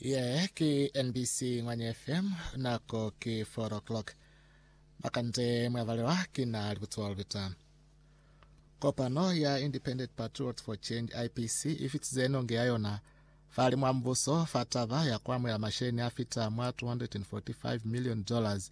ye ke nbc ngwanye fm nako ke 4 o'clock makande mwavalelwa ke na libutsiwa lubita kopano ya independent patriots for change ipc e fitize nonge ya yona fa le mwambuso fa taba ya ku amohela masheleni a fita mwa 245 million dollars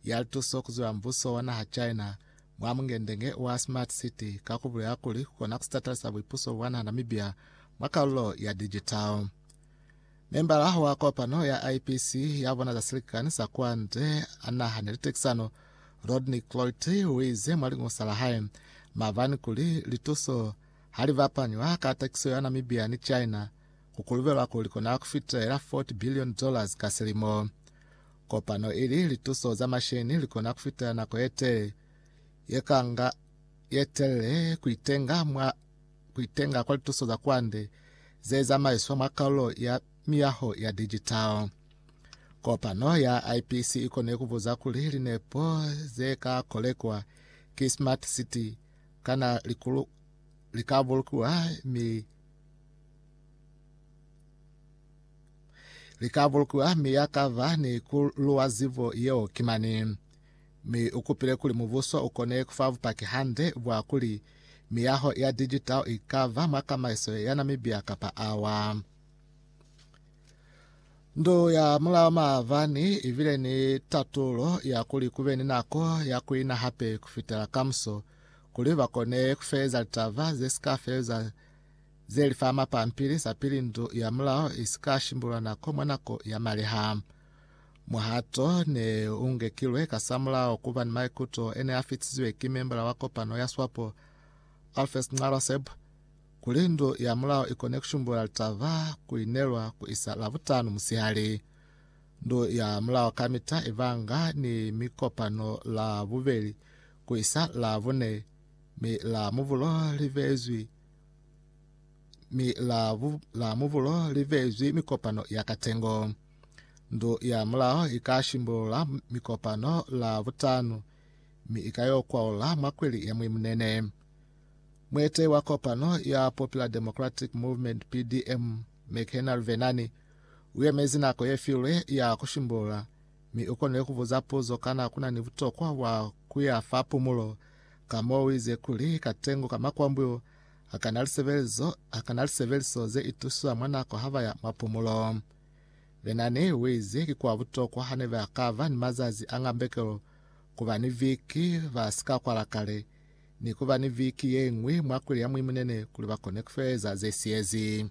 ya lituso ku ziwa mbuso wa naha china Mwa mungendenge wa Smart City ka ku bulela kuli ku kona ku sitatala sa buipuso bwa naha Namibia mwa kalulo ya digital. Membala wa kopano ya IPC ya bona za silikani sa kwande a naha ni litekisano Rodney Cloit uize mwa lingusa la hae mavani kuli lituso ha li bapanywa ka takiso ya Namibia ni China ku kulubelwa kuli kona ku fitelela 40 billion dollars ka silimo. Kopano ili lituso za masheni likona kufitela nako yetee yekanga yetelele kuitenga mwa kuitenga kwa lituso za kwande zezamaiswa mwa kalulo ya miyaho ya digital. Kopano ya IPC ikone kubuza kuli linepo zeka kolekwa ki Smart City kana likulu likabulukiwa mi Lika bulukiwa mi ya ka ba ni ku luwa zibo yeo ki mani. Mi u kupile kuli mubuso u kone ku fa bupaki hande bwa kuli miyaho ya digital i ka ba mwa kamaiso ya Namibia kapa awa. Ndu ya Mulao maabani i bile ni tatulo ya kuli ku be ni nako ya ku ina hape ku fitela kamuso kuli ba kone ku feleza litaba ze si ka feleza Ze li fa mapampili za pili ndu ya mulao i si ka shimbulwa nako mwa nako ya maliha. Muhato ne u ngekilwe kasamulaho ku ba ni maikuto e ne a fitisiwe ki membala wa kopano ya SWAPO, Alpheus Nxaraseb, kuli ndu ya mulao i kone ku shimbula litaba ku li nelwa ku isa Lavutanu musihali. Ndu ya mulao kamita i banga ni mikopano Lavubeli ku isa Lavune, mi Lamubulo li bezwi mi la, bu, la mubulo li vezwi mikopano ya katengo. Ndu ya mulao i ka shimbulula mikopano la butanu, mi i ka yo kwaula mwa kweli ya mwi munene. Muetehi wa kopano ya Popular Democratic Movement PDM McHenry Vhennani u yemezi nako ye filwe ya ku shimbulula, mi u konile ku buza puzo kana ku na ni butokwa bwa ku ya fa pumulo Ka mo uize kuli, katengo ka makwambu, hakana lisebelezo, hakana lisebeliso ze ituswa mwa nako ha baya mwa pumulo. Benani uize ki kwa butokwa hane ba kaba ni mazazi a ngambekelo, kuba ni viki ba si ka kwala kale, ni kuba ni viki yeñwi mwa kuli ya muimunene kuli bakone kufeeza ze siyezi.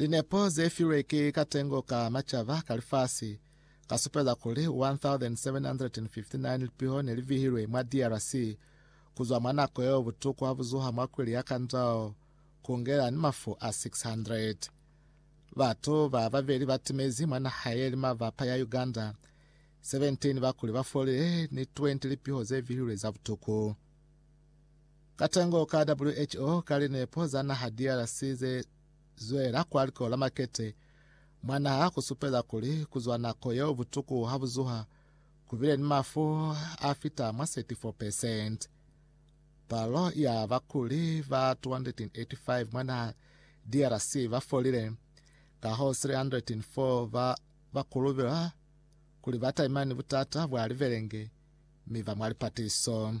Linepo ze filwe ki Katengo ka Macaba ka Lifasi ka supeza kuli 1,759 lipiho ne li vihilwe mwa DRC ku zwa mwa nako yeo butuku ha bu zuha mwa kwili ya Kandal ku ngela ni mafu a 600. Batu ba babeli ba timezi mwa naha ye li mabapa ya Uganda, 17 ba kuli ba folile ni 20 lipiho ze vihilwe za butuku. Katengo ka WHO ka linepo za naha DRC ze zwela kwa liko la makete mwa naha ku supeza kuli ku zwa nako yeo butuku ha bu zuha ku bile ni mafu a fita mwa 34 percent. Palo ya bakuli ba 285 mwa naha DRC ba folile, kahoo 304 ba ba kulubilwa kuli ba taimani butata bwa libelenge mi ba mwa lipatiso.